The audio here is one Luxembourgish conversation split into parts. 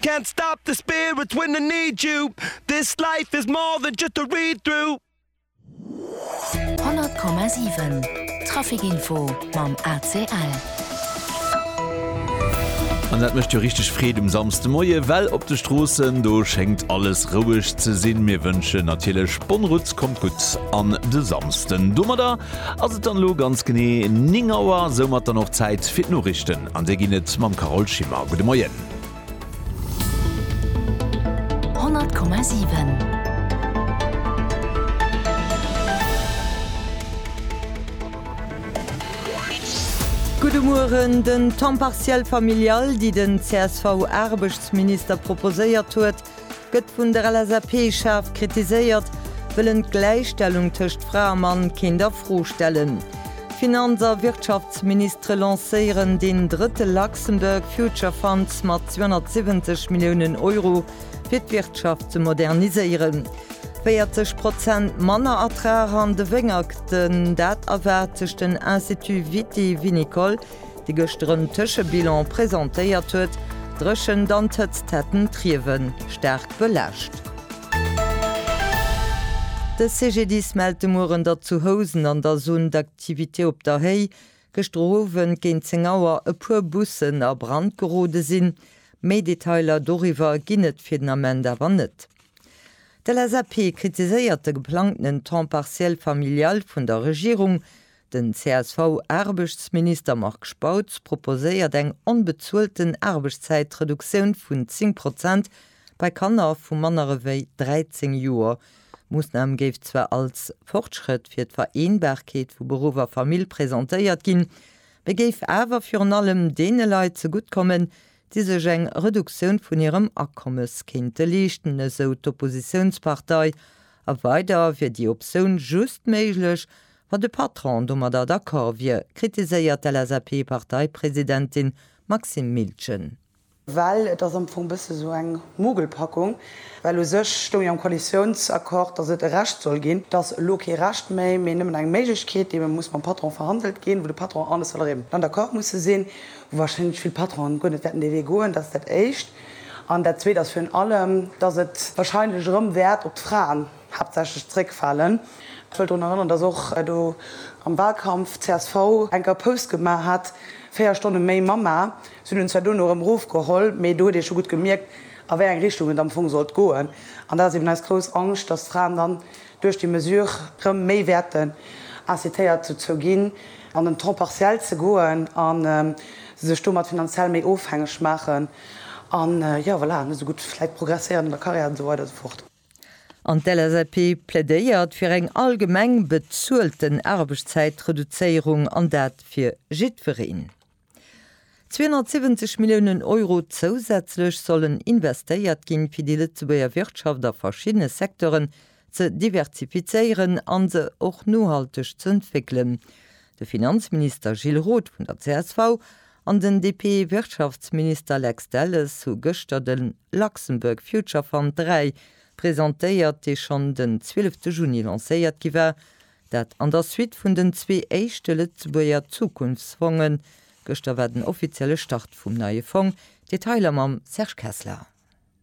Can't stop the spirit when I need you This life is more than just a read through. 100,7 Traficinfo mam ACL. An dat mécht jo richteg Freed um Samsdemoie well op de Stroossen, do schéngt alles roueg ze sinn. Mir wënschen natierlech bonne route, kommt gutt an de Samsden. Domadder ass et dann elo ganz genee 9 Auer, soumat dann och Zäit fir d'Noriichten an déi ginn et mam Carole Schimmer. Gudde Moien. 100,7. Gudde Mueren, Den Temps partiel familial, déi den csv-Aarbechtsminister proposéiert huet, gëtt vun der LSAP schaarf kritiséiert, wëll en d'Gläichstellung tëscht Fra a Mann kéint a Fro stellen. D'Finanz a Wirtschaftsministere lancéieren deen drëtte Luxembourg Future Fund mat 270 Milliounen Euro, fir d'Wirtschaft ze moderniséieren. 40 Prozent manner Ertrag an de Wéngerten, dat erwaart sech den Institut Viti Vinicole. déi gëschter en Tëschebilan presentéiert huet, D'Dréchent an d'Hëtzt hätten d'Riewe staark belaascht. De CGDIS mellt de Mueren, datt zu Housen an der Zone d'activité Op der Héi gëschter Owend géint 10 Auer e puer Bussen a Brand gerode sinn. Méi Detailer doriwwer ginn et fir den Ament awer net. D'LSAP kritiséiert de geplangtenen Temps partiel familial vun der Regierung. Den CSV-Aarbechtsminister Marc Spautz proposéiert eng onbezuelten Aarbechtszäitreduktioun vun 10 Prozent bei Kanner vu manner ewéi 13 Joer. D'Moossnam géif zwar als Fortschrëtt fir d'Vereenbarkeet vu Beruff a Famill presentéiert ginn, mee géif awer virun allem deene Leit zegutt kommen, déi sech eng Reduktioun vun hirem Akommes kéinte leeschten, esou d'Oppositiounspartei. A weider wier déi Optioun just méiglech, Wa de Patron domadder d'accord wier, kritiséiert d'LSAP-Parteipresidentin Maxime Miltgen. Well et ass am Fong e bësse sou eng Mogelpackung, well u sech stoung jo am Koalitiounsaccord, datt et e Recht soll ginn. Et ass elo kee Recht méi, mee nëmmen eng Méiglechkeet, déi ebe muss mam Patron verhandelt ginn, wou de Patron an de Salarié mat an d'accord musse sinn, wou warscheinlech vill Patronen guer net wäerten dee Wee goen. Dat ass dat Éischt. An dat Zweet ass virun allem, datt et warscheinlech erëm wäert op d'Fraen. haaptsächlech zréckfalen. Ech wëll drun erënnern, datt och do am Wahlkampf csv enker Pause gemaach hat, véier Stonne méi Mamma. Si hunn en zwar duerno erëm erofgeholl, mee do huet ee scho gutt gemierkt, a wéi eng Richtung et am Fong sollt goen. An dat ass eben eis grouss Angscht, datt d'Fraen dann duerch déi Mesure erëm méi wäerten incitéiert dozou ginn, an den Temps partiel ze goen a se sech domat finanziell méi ofhängeg maachen. An, jo, voilà, net esou gutt vläicht progresséieren an der Karriär an esou weider esou fort. An d'LSAP plädéiert fir eng allgemeng bezuelten Aarbechtszäitreduzéierung, an dat fir jiddwereen. 270 Milliounen Euro zousätzlech sollen investéiert ginn, fir déi Lëtzebuerger Wirtschaft a verschiddene Secteuren ze diversifizéieren a se och nohalteg ze entwéckelen. De Finanzminister Gilles Roth vun der csv an den DP-Wirtschaftsminister Lex Delles hu gëschter de Luxembourg Future Fund 3 presentéiert, dee schonn den 12 Juni lancéiert gi war. Dat an der Suite vun den zwee éischte Lëtzebuerger Zukunftsfongen. Gëschter war den offizielle Start vum neie Fong. Detailer mam Serge Kessler.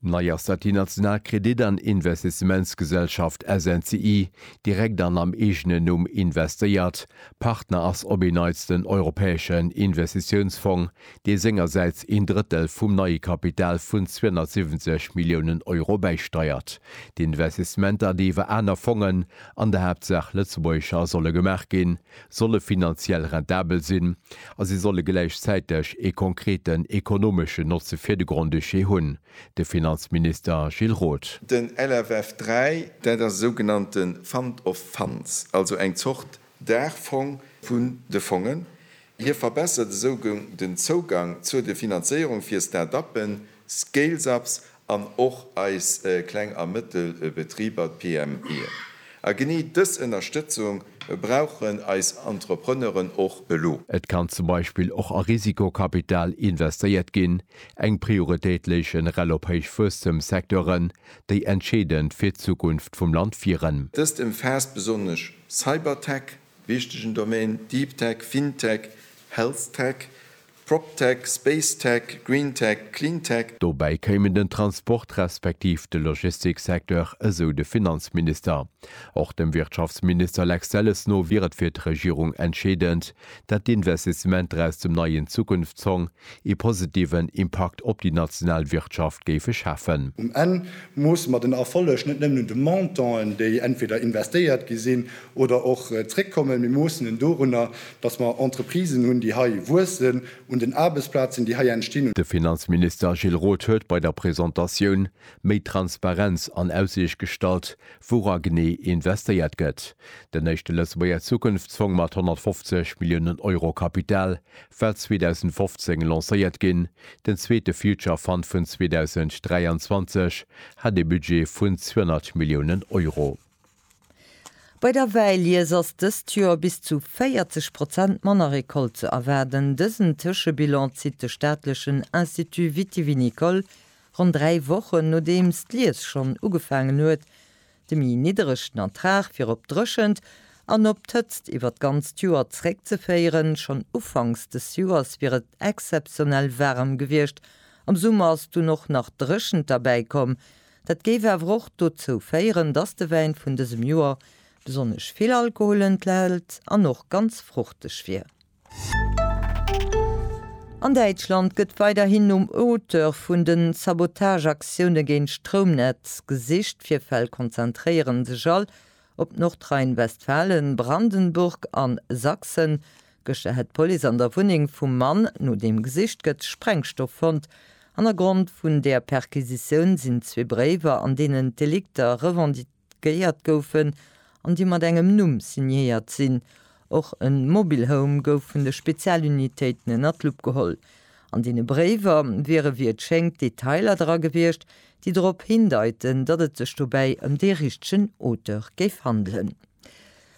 Nei ass dat déi national Kredit an Investissementsgesellschaft SNCI, direkt an am eegenen Numm investéiert. Partner ass op een Neits den Europäeschen Investitiounsfong, dee sengersäits een Drëttel vum neie Kapital vun 270 Milliounen Euro bäisteiert. D'Investissementer, déi iwwer aner Fongen, an der Haaptsaach lëtzebuergescher, solle gemaach ginn, solle finanziell rentabel sinn a se solle gläichzäiteg ee konkreten ekonomeschen Notze fir de Grand-Duché hunn, de Finanzminister Gilles Roth. Den LFF 3, dat ass e sougenannte Fund of Funds, also eng Zort Daachfong vun de Fongen. Hie verbessert esou den Zougang zur de Finanzéierung fir Start-uppen, Scale-ups an och eis kleng a mëttel Betriber, d'PMEen. A genee dës Ënnerstëtzung brauchen eis Entrepreneuren och elo. Et kann zum Beispill och a Risikokapital investéiert ginn, eng Prioritéit léich nrl op héich Wuesstemssecteuren, déi entscheedend fir d'Zukunft vum Land wieren. Dëst ëmfaasst besonnesch Cybertech, wichtegen Domaine, Deeptech, Fintech, Healthtech, PropTech, SpaceTech, GreenTech, CleanTech. Dobäi kéimen den Transport respektiv de Logistiksecteur, esou de Finanzminister. Och dem Wirtschaftsminister Lex Delles no wier et fir d'Regierung entscheedend, dat d'Investissementer aus dem neien Zukunftszong ee positiven Impakt op déi national Wirtschaft géife schafen. Um Enn moosse mer den Erfolleg net nëmmen un de Montanten, déi entweder investéiert gi sinn oder och zréckkommen. Mir moossen en dorunner, Dass mer Entreprisen hunn, déi hei wuessen, un den Aarbechtsplazen, déi hei entstinn, un. De Finanzminister Gilles Roth huet bei der Presentatioun méi Transparenz an Aussiicht gestallt, wou a genee investéiert gëtt. Den éischte Lëtzebuerger Zukunftsfong mat 150 Milliounen Euro Kapital war 2015 lancéiert ginn, den zweete Future Fund vun 2023 hat ee Budget vun 200 Milliounen Euro. Bei der Wäilies ass dëst Joer bis zu 40 Prozent manner Recolte ze erwaarden. Dësen Tëschebilan zitt de staatlechen Institut vitivinicole ronn dräi Wochen, nodeems d'Lies schonn ugefaangen huet. De méi nidderegen Ertrag wier op d'Dréchent an op d'Hëtzt iwwer d'ganzt Joer zréckzeféieren. Schonn ufanks des Joers wier et exzeptionell waarem gewiescht, am Summer ass dunn och nach d'Dréchent derbäi komm. Dat géif awer och dozou féieren, dass de Wäin vun dësem Joer besonnesch vill Alkohol enthält an och ganz fruchteg wier. An Däitschland gëtt weiderhin nom Auteur vun den Sabotageaktioune géint d'Stroumnetz gesicht. D'Virfäll konzentréiere sech all op Nordrhein-Westfalen, Brandenburg an Sachsen. Gëschter hätt d'Police an der Wunneng vum Mann, no deem gesicht gëtt, Sprengstoff fonnt. Hannergrond vun där Perquisitioun sinn zwee Bréiwer, an deenen d'Delikter revendiquéiert goufen an déi mat engem Numm signéiert sinn. Och e Mobile Home gouf vun de Spezialunitéiten ënner d'Lupp geholl. An deene Bréiwer wiere wéi et schéngt Detailer dra gewiescht, déi drop hindeiten, datt et sech dobäi ëm dee richtegen Auteur géif handelen.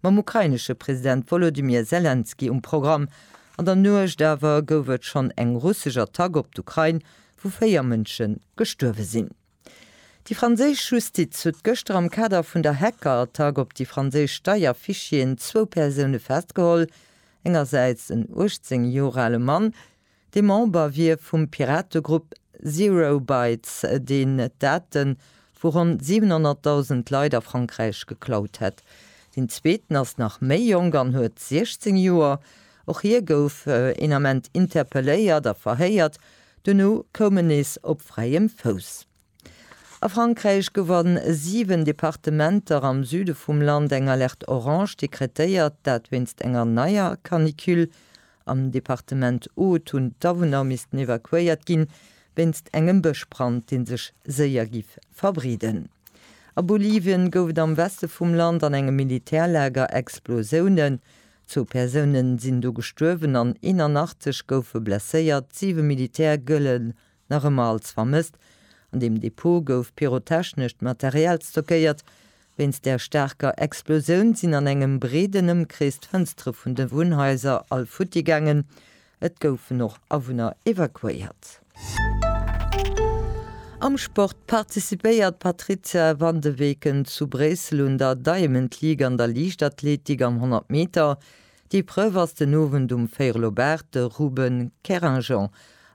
mam ukrainesche President Wolodymyr Selenskyj um Programm. An der Nuecht awer gouf et schonn eng russesch Attack op d'Ukrain, wou véier Mënsche gestuerwe sinn. Déi franséisch Justiz huet gëschter am Kader vun der Hackerattack op déi franséisch Steierfichieren zwou Persoune festgeholl, engersäits en 18 Joer ale Mann, De Member wier vum Pirategrupp Zero Bytes, deen d'Date vu ronn 700.000 Leit a Frankräich geklaut hätt. Deen zweeten ass nach méi jonk an huet 16 Joer. Och hie gouf een Ament interpelléiert a verhéiert, duerno koum en nees op fräiem Fouss. A Frankräich gouf an 7 Departementer am Süde vum Land eng Alerte Orange dekretéiert, dat wéinst enger neier Canicule. Am Departement Aude hunn d'Awunner missten evakuéiert ginn, wéinst engem Bëschbrand, dee sech séier giff verbreeden. A Bolivien gouf et am Weste vum Land an engem Militärlager Explosiounen. Zwou Persounen sinn do gestuerwen an 81 goufe blesséiert, siwe Militär gëlle nach ëmmer als vermësst. An deem Depot gouf pyrotechnescht Material stockéiert. Wéinst der staarker Explosioun sinn an engem breeden Ëmkrees d'Fënstere vun de Wunnhaiser all futti gaangen. Et goufen och Awunner evakuéiert. Am Sport participéiert d'Patrizia van de Weken zu Bréissel un der Diamond League an der Liichtathletik am 100 Meter. D'Epreuve ass den Owend um Veyre-Lobart, de Ruben Kerringeon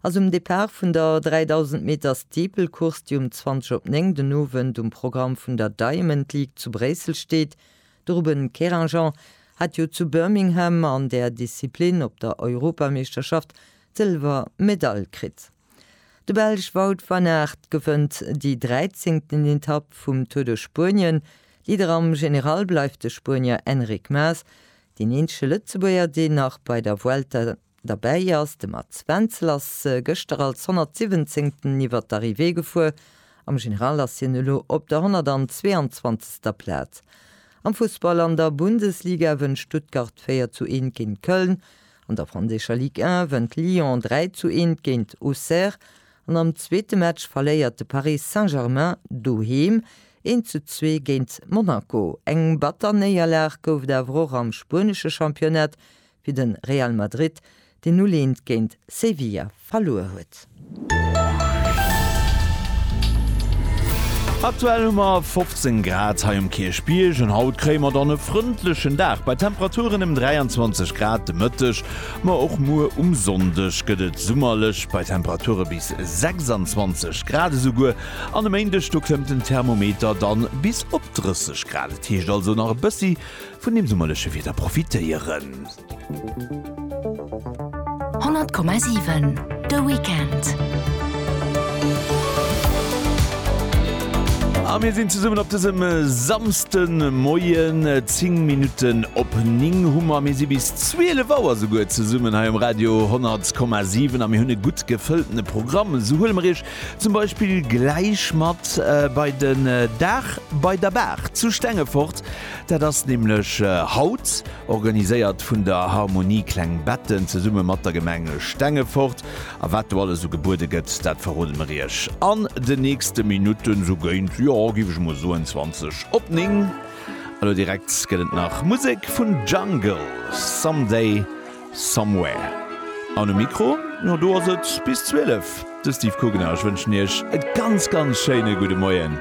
ass um Depart vun der 3000 Meter Steeple-Course, déi um 20 op 9 den Owend um Programm vun der Diamond League zu Bréissel steet. De Ruben Kerringeon hat jo zu Birmingham an där Disziplin op der Europameeschterschaft d'Sëlwermedail kritt. De Belsch Wout van Aert gewënnt déi dräizéngten Etapp vum Tour de Spuenien. Leader am General bleift de Spuenier Enric Maes. Deen eenzege Lëtzebuerger, deen nach bei der Vuelta derbäi ass, de Mats Wenzel, ass gëschter als 117ten iwwer d'Arrivée gefuer. Am General ass hien elo op der 122. Plaz. Am Fussball an der Bundesliga wënnt Stuttgart 4 zu 1 géint Köln. An der franséischer Ligue 1 wënnt Lyon 3 zu 1 géint Auxerre an am zweete Match verléiert de Paris Saint-Germain doheem 1 zu 2 géint Monaco. Eng batter Néierlag gouf et awer och am spuenesche Championnat fir de Real Madrid, deen null 1 géint Sevilla verluer huet. Aktuell hu mer 15 Grad hei um Kierchbierg an haut kréie mer dann e frëndlechen Dag bei Temperaturen ëm 23 Grad de Mëtteg. Ma och muer um Sonndeg gëtt et summerlech bei Temperature bis 26 Grad. Esouguer an e Méindeg, do klëmmt den Thermometer dann bis op 30 Grad. Et heescht also nach e bëssi Vun dem summerleche Wieder profitéieren. 100,7 De Weekend. A mir sinn zesummen op dësem Samsdemoien. Zéng Minutten op néng hu mer. Mir si bis 12 Auer souguer zesummen hei um Radio 100,7 a mir hunn e gutt gefëlltene Programm. Esou huele mer Iech zum Beispill gläich mat bei den Dag bei der Baach zu Stengefort. Dat ass nämlech haut, organiséiert vun der Harmonie Kleng Betten zesumme mat der Gemeng Stengefort. A wat do alles esou gebuede gëtt, dat verrode mer iech an den nächste Minutten, esou géint, jo, giff ech emol soen, 20 op 9. Elo direkt gëtt et nach Musek vun Jungle, Someday. Somewhere. An um Mikro, jo do ass et bis 12, de Steve Kugner. Ech wënschen iech e ganz, ganz schéine gudde Moien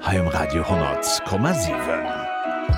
hei um Radio 10,7.